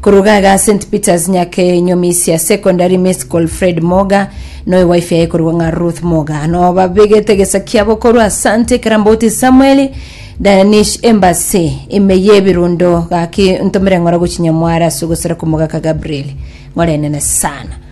Koruga iga St Peters Nyakenyomisia Secondary Miscol Fred Moga noyo wife yaye korwa ng'a Ruth Moga no babegete gesa kiabo korwa Asante Karamboti Samuel Danish Embassy ime yebirundo gaki ntomere ng'ora gochinya mware asugosera komogaka Gabriel ng'orenene sana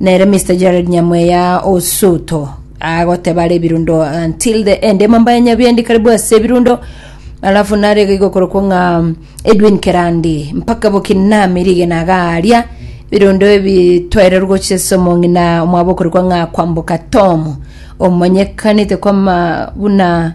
Nere Mister Jared Nyamweya o Soto agoteba are ebirundo until the end emamba ya Nyabiendi karibu ase ebirundo alafu nare iga igokorokwo ng'a Edwin Kerandi mpaka Bokinami rigena agaria ebirundo ebi twairerwa gochia ase omong'ina omwabo okorokwa ng'a Kwamboka Tom omonyekanete kwama buna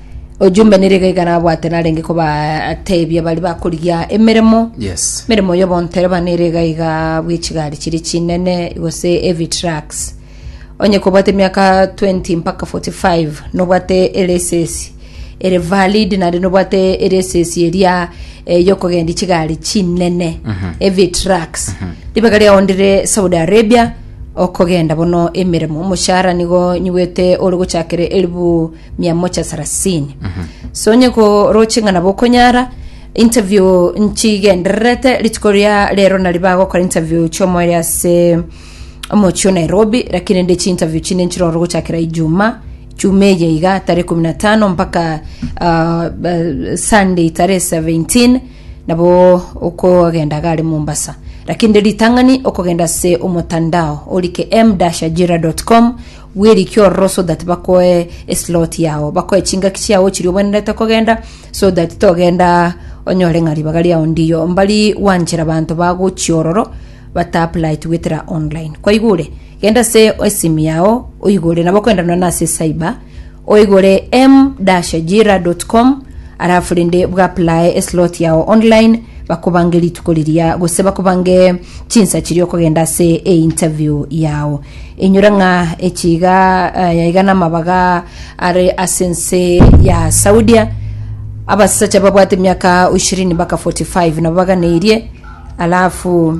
Ojumbe nere iga iga nabwate narenge kobatebia bari bakorigia emeremo Yes. emeremo y'obontereba nere iga iga bw'echigari chiri chinene gose heavy trucks onye kobwate emiaka 20 mpaka 45 nobwate eresesi ere valid naende nobwate eresesi eria eh, yokogendia chigari chinene heavy trucks ribaga riao ndire saudi arabia okogenda bono emeremo omoshahara nigo nyigwete ore gochakere elibu mia mocha sarasini so onye koroche ng'a nabo okonyara interview nchigendererete rituko ria rero nari bagokora interview chiomoere ase omochio nairobi lakini rende chiinterview chinde nchiroro gochakera ijuma chuma eye iga tarehe kumi na tano mpaka ah, ba- sunday tarehe 17 nabo okogenda gare mombasa lakini rende ritang'ani okogenda ase omotandao orike m-ajira.com Bw'erikio ororo so that bakoe eslot yao, bakoe chingaki chiao chiria obwenerete kogenda, so that togenda onyore ng'a ribaga riao ndiyo. Mbari gwanchera banto bagochia ororo bataapplyeti goetera online. Kwaigure? Genda ase esimi yao oigore, nabo kogenda nonya na ase cyber, Oigore m-ajira.com arafu rende bwaplae eslot yao online bakobange rituko riria gose bakobange chinsa chiria okogenda ase einterview yao inyora ng'a echiga eh, iga namabaga are ase ense ya saudia abasacha babwate emiaka 20 mpaka 45 nabo baganeirie alafu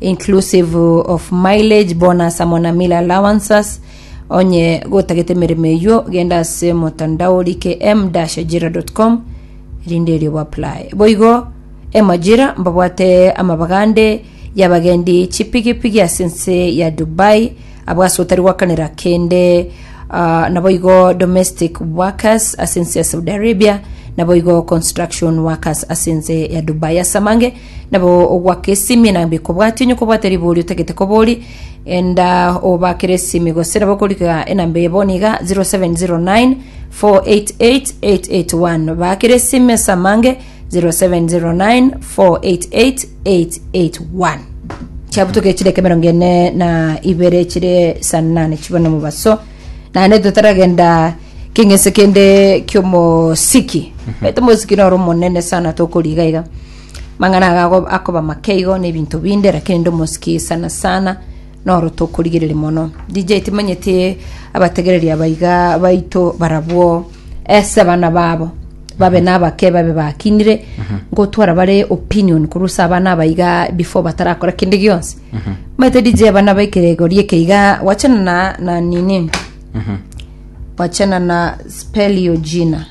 inclusive of mileage, bonus amo na meal allowances. Onye gotagete emeremo eyio, genda ase motandao orike m-ajira.com rinde erio boapply. Boigo emajira mbabwate amabagande y'abagendi chipigipigi ase ense ya Dubai abwo ase otari gwakanera kende ah, naboigo domestic workers ase ense ya Saudi Arabia naboigo construction workers ase ense ya Dubai ase amange Nabo ogwake esimi na bikobwati onye kobwate ribori otagete kobori enda obakere esimi gose nabo korika enamba eye bono iga 0709 488881 bakere esimi ase amange 0709 488881 chiabutoke chire ekemerongo ene na ibere chire sanane chibe na omobaso naende totaragenda keng'ense kende kiomosiki ete omosiki noro omonene sana tokoriga iga Mang'ana aga ago akoba make igo n'ebinto binde, lakini nde omosiki sana sana noro tokorigereria mono. DJ timanyeti abategereri abaiga baito barabwo ase abana babo babe nabake babe bakinire ngotwara bare opinion korwa ase abana abaiga before batarakora kende gionsi maete DJ abana baikere egori ekeiga wachana na, na nini wachana na spell your jina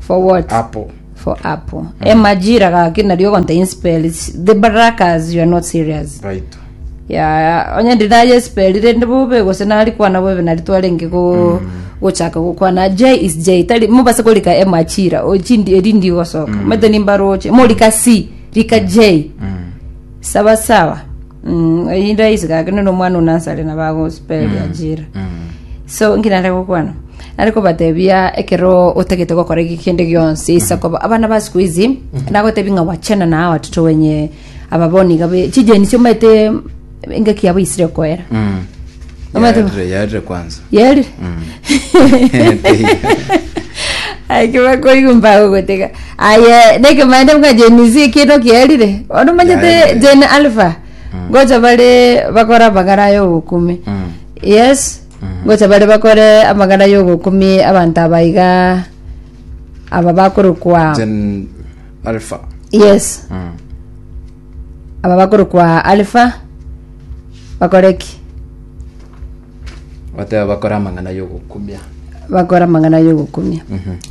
For what? Apo. For apo. E majira gaki nari ogonta inspeli. The barakas you are not serious. Right. Ya onye ndi naye espeli rende bobe gose nari kwana bobe nari twarenge go gochaka gokwana J is J tari mubase korika e majira ochindi erindi gosoka. Mete nimbaroche morika C rika J. Sawasawa. Mm, eyinde aise gake none omwana onasare na bagospelya jira. So ngina nare gokwana. Nare kobatebia ekero otagete gokora eki kende gionsi isa koba abana ba siku hizi nagotebi nga wachana na hawa tuto wenye ababoni gabe chijeni sio mete engaki yabo isire koera. Mm. Omanyete bo- Yaerire, yaerire kwanza. yeri akibakoigwa mbago gotega aye nekemaende bwa jenisi ekindo kierire ono manyete Yaerire. jen alpha gocha bare bakora amagara ya obokumi Mm. yes gocha bare bakore amagara ya obokumi abanto abaiga aba bakorokwa Gen Alpha. yes Mm. Aba bakorokwa Alifa bakore ki? Goteba bakore amang'ana y'ogokumia. bakora amang'ana y'ogokumia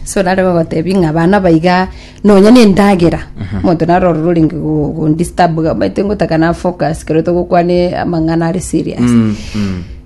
so nare bagotebi ng'a abana baiga nonya na endagera omonto naro ororo orenge go- gondisturb gamaete ngotaka na focus kero togokwane amang'ana are serious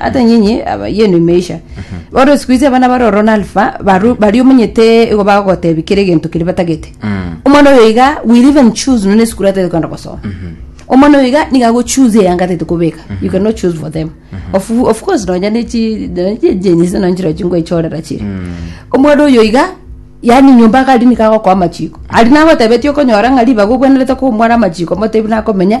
Ata nyenye aba yenu imeisha. Oro siku hizi abana baroro na alfa baru bari omunyete igo bagotebi kere gento kiri batagete. Omwana oyo iga will even choose none school atete kwenda gosoma. Omwana oyo iga niga go choose eyanga atete kobeka. You cannot choose for them. Of, of course nonya ne chi nonya chi jenyi se nonchira chingwe chorera chiri. Omwana oyo iga yani nyomba kari niga gokwa amachiko. Ari nagotebetie okonyora ng'a ribaga ogwenerete komwara amachiko motebi nakomenya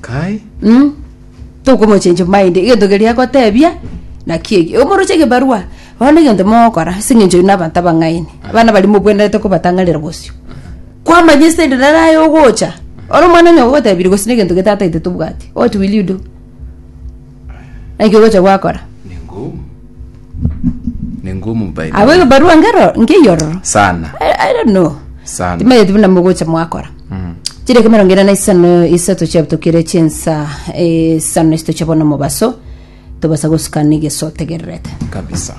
Kai. Mm. Tokomochenchia maende egento keria agotebia naki eki omoroche egebarua bono egento mogokora ase eng'encho ere na abanto abang'aini abana baria mobwenerete kobatang'arera bosio kwamanya esende nere aye ogocha ore omwana onye ogotebirie gose na egento gete tataete tobwati what will you do Naki ogocha gwakora. Ning'o ning'o omobaibuli. Abwo egebarua ngero nkeiyororo. Sana. I, I don't know. Sana. Timayeti buna mogocha mwakora. Mm. Chiri ekemerongo ere na isano isato chiabutokire chinsa eh, isano isito chiabona omobaso tobasa gosukana egeso otegererete. Kabisa.